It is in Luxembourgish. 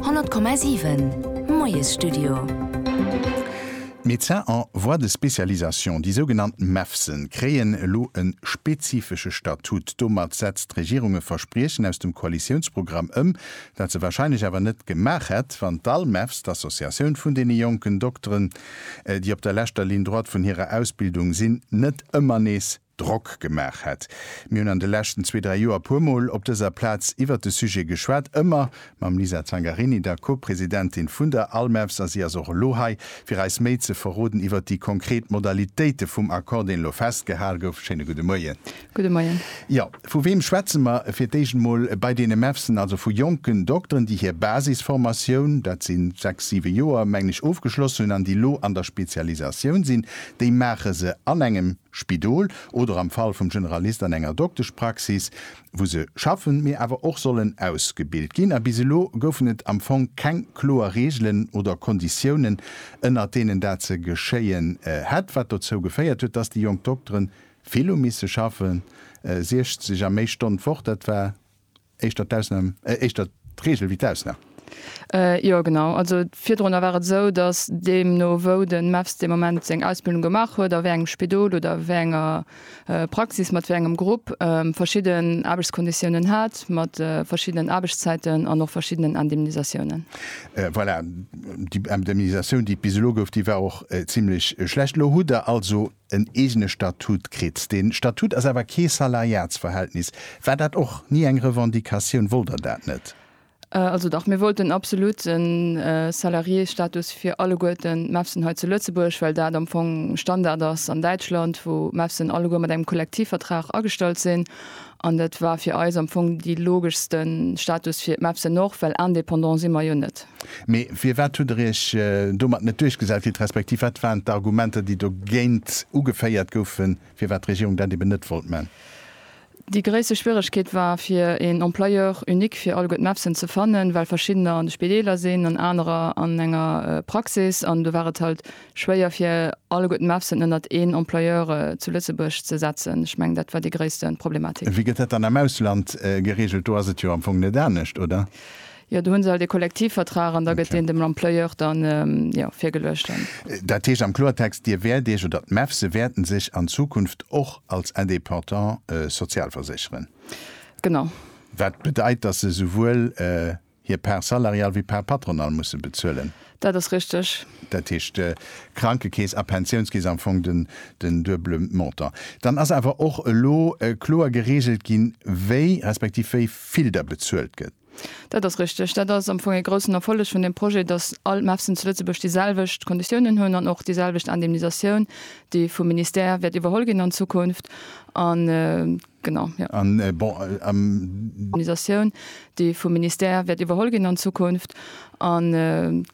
100,7 Moiesstudio. D'Médecins en voie de spécialisation, déi sougenannt MEVSen, kréien elo e spezifesche Statut. Domat setzt d'Regierung e Verspriechen aus dem Koalitiounsprogramm ëm, dat se warscheinlech awer net gemaach hätt, wann d'ALMEVS, d'Associatioun vun deene jonken Dokteren, déi op der leschter Ligne droite vun hirer Ausbildung sinn, net ëmmer nees Drock gemaach hätt. Mir hunn an de leschten zwee, dräi Joer e puer Mol op dëser Plaz iwwert de Sujet geschwat, ëmmer mam Lisa Zangarini, der Co-Presidentin vun der ALMEVS, a si ass och elo hei, fir eis méi ze verroden iwwert déi konkret Modalitéite vum Accord, deen elo festgehal gouf. Schéine gudde Moien. Gudde Moien. Jo, vu weem schwätze mer? Fir d'éischt emol bei deene MEVSen, also vu jonken Dokteren, déi hir Basisformatioun, dat si sechs, siwe Joer, mengen ech, ofgeschlossen hunn an déi elo an der Spezialisatioun sinn. Déi maache se an engem. Spidol oder am Fall vum Generalist an enger Dokteschpraxis, wou se schaffen, mee awer och sollen ausgebilt ginn. A bis elo goufen et am Fong keng kloer Reegelen oder Konditiounen, ënnert deenen dat ze geschéien hätt, wat dozou geféiert huet, dass déi jonk Dokteren vill hu misse schaffen, 60 a méi Stonn d'Woch. Dat war. Éischter d'Ausnam, äh, éischter d'Regel wéi d'Ausnam. Jo, genau. Also virdrunner war et esou, datt deemno wou de MEFS dee Moment seng Ausbildung gemaach huet, a wéi engem Spidol oder wéi enger Praxis, mat wéi engem Grupp, verschidden Aarbechtskonditiounen hat, mat verschiddenen Aarbechtszäiten an och verschiddenen Indemnisatiounen. Voilà, déi Indemnisatioun, déi et bis elo gouf, déi war och zimlech schlecht. Elo hutt Der also en eegene Statut kritt. Dee Statut ass awer kee Salariatsverhältnis. War dat och ni eng Revendicatioun? Wollt Der dat net? Also dach, mir wollten absolut e Salariésstatus fir alleguerten MEFSen hei zu Lëtzebuerg, well dat am Fong Standard ass an Däitschland, wou MEFSen alleguer mat engem Kollektivvertrag agestallt sinn. An dat war fir eis am Fong dee logeschste Status fir d'Mepsen och, well indépendant si mer jo net. Mee firwat hutt der iech domat net duerchgesat kritt, respektiv wat waren d'Argumenter, déi dogéint ugeféiert goufen, firwat d'Regierung dat eben net wollt man? Déi gréisste Schwieregkeet war, fir een Employeur unique fir alleguer d'Mepsen ze fannen, well verschiddener an de Spideeler sinn an anerer an enger Praxis. An do war et halt schwéier fir alleguerten MEFSen ënnert een Employeur zu Lëtzebuerg ze setzen. Ech mengen, dat war déi gréisste Problematik. Wéi gëtt dat dann am Ausland geregelt? Do ass et jo am Fong net anescht, oder? Jo, do hu se halt ee Kollektivvertrag an da gëtt deen dem Employeur dann, jo, virgeluecht dann. Dat heescht am Kloertext, Dir wäert Iech, oder d'MEFSe wäerten sech an Zukunft och als Indépendant sozialversécheren? Genau. Wat bedeit, dass se souwuel hir Part salariale wéi Part patronale musse bezuelen. Dat ass richteg. Dat heescht, Krankekeess a Pensiounskeess, am Fong den duebele Montant. Dann ass awer och elo kloer gereegelt ginn, wéi, respektiv wéi vill da bezuelt gëtt. Dat ass richteg. Dat ass am Fong ee groussen Erfolleg vun deem Projet, dass all MEFSen zu Lëtzebuerg déi selwecht Konditiounen hunn an och déi selwecht Indemnisatioun, déi vum Ministère wäert iwwerholl ginn an Zukunft. Genau, jo. An bon, am. Organisatioun, déi vum Ministère wäert iwwerholl ginn an Zukunft an.